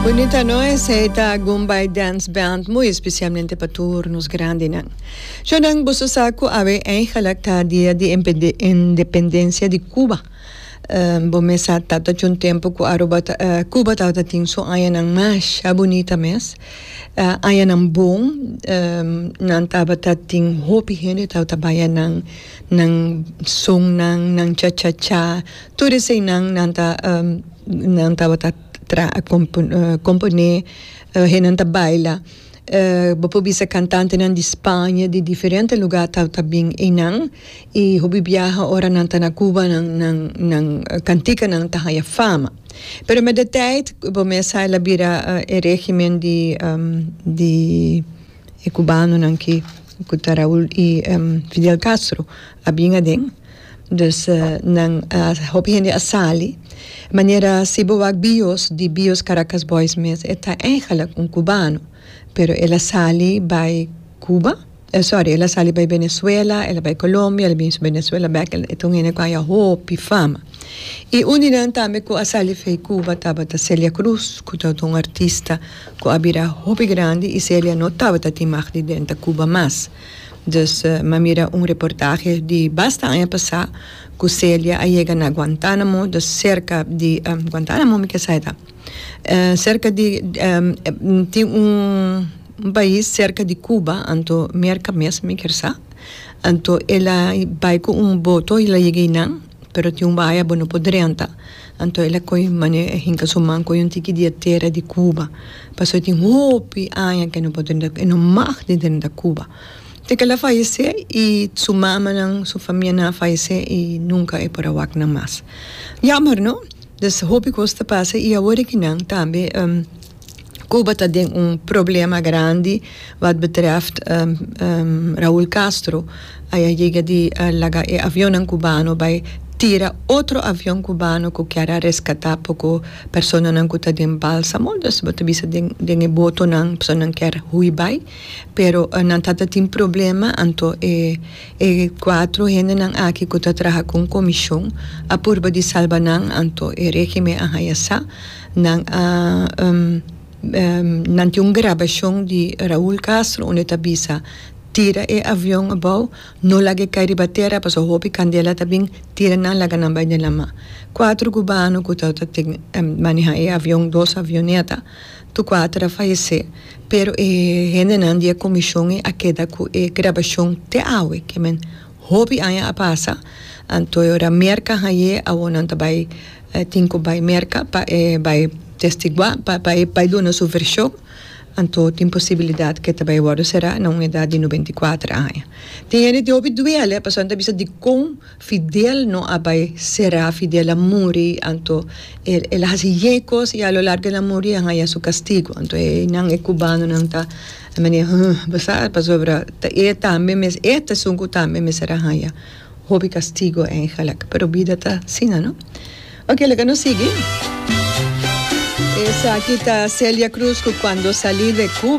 Bunita no esei ta Gumbay Dance Band muy especialmente pa tur nos grandinan. Cho nan boso sa cu awe eigenlijk ta dia di independencia di Cuba. Bo mes sa tabata cu un tempo cu Aruba Cuba tabata tin su añanan masha bunita mes. Añanan bon nan tabata tin hopi hende tabata baya nan nan sonnan nan cha cha cha. Tur eseinan nan ta nan tabata kompon'é hennan ta baila bo por bisa kantantenan di Spaña di diferente lugá ta bin einan i hopi biaha ora nan ta na Cuba nan kantikanan ta haña fama pero met de tèit bo mes sa el a bira e régimen di di e kubanonan ki ku ta Raúl i Fidel Castro a bin aden. Dus nan a hopi hende a sali manera si bo wak bios di bios Caracas Boys mes e ta eigenlijk un kubano pero el a sali bai Cuba sorry el a sali bai Venezuela el a bai Colombia el a binshi Venezuela bek e ta un hende ku a haña hopi fama i un di nan tambe ku a sali fei Cuba tabata Celia Cruz ku tabata un artista ku a bira hopi grandi i Celia no tabata tin mag di denta Cuba mas. Dus, m'a mira un reportahe di basta aña pasá ku Celia a yega na Guantánamo, dus serka di, Guantánamo mi ke sa e ta. Serka di, tin un pais serka di Kuba, anto Merka mes mi ker sa. Anto el a bai ku un boto i el a yega einan. pero tin un bahaya bo no por drenta anto el a coge mane a hinca su man coge un tiki di e tera di cuba pasobra tin hopi aña que el no por drenta el no mag di drenta cuba ta que el a fayece y su mamanan su famianan a fayece y nunca e por a wak nan mas jammer no hopi cos ta pasa y awor e kinan tambe. Cuba ta den un problema grandi wat betreft Raul Castro a yega di laga e avionnan cubano bay tira otro avion cubano cu kier a rescata poco personanan cu ta den balsamo dus bo ta bisa den e botonan e personanan kier hui bay pero nan ta ta tin problema anto e e cuatro hendenan aki cu ta traha con comision a purba di salba nan anto e regime a haya sa Nan a nan tin un grabashon di Raul Castro unda e ta bisa, Tira e avion abou, no laga e kai riba tera pasobra hopi kandela ta bin tira nan laga nan bai den lama. Kuater kubano ku tabata tin maneha e avion, dos avioneta, tur kuater a fayesé pero e hendenan di e komishon a keda ku e grabashon te awe. Hopi aña a pasa, anto e ora Merka hañ'é awor nan ta bai tin ku bai Merka pa e bai testiguá, pa e bai duna su vershon, anto tin posibilidat ku e ta bai wòrdu será na un edat di nubenta i kuater aña. Tin hende tin hopi duele pasobra nan ta bisa dikon Fidel no a bai será, Fidel a muri, anto el a hasi ye kos i a lo largu el a muri, el a haña su kastigu. Anto einan e kubanonan ta. E mane, Hë, bo sa, pasobra ta e tambe mes e tazon ku tambe mester a haña hopi kastigu eigenlek. Pero bida ta asina, no? Oke, laga nos sigui. Esaki ta Celia Cruz ku kuando sali de Cuba.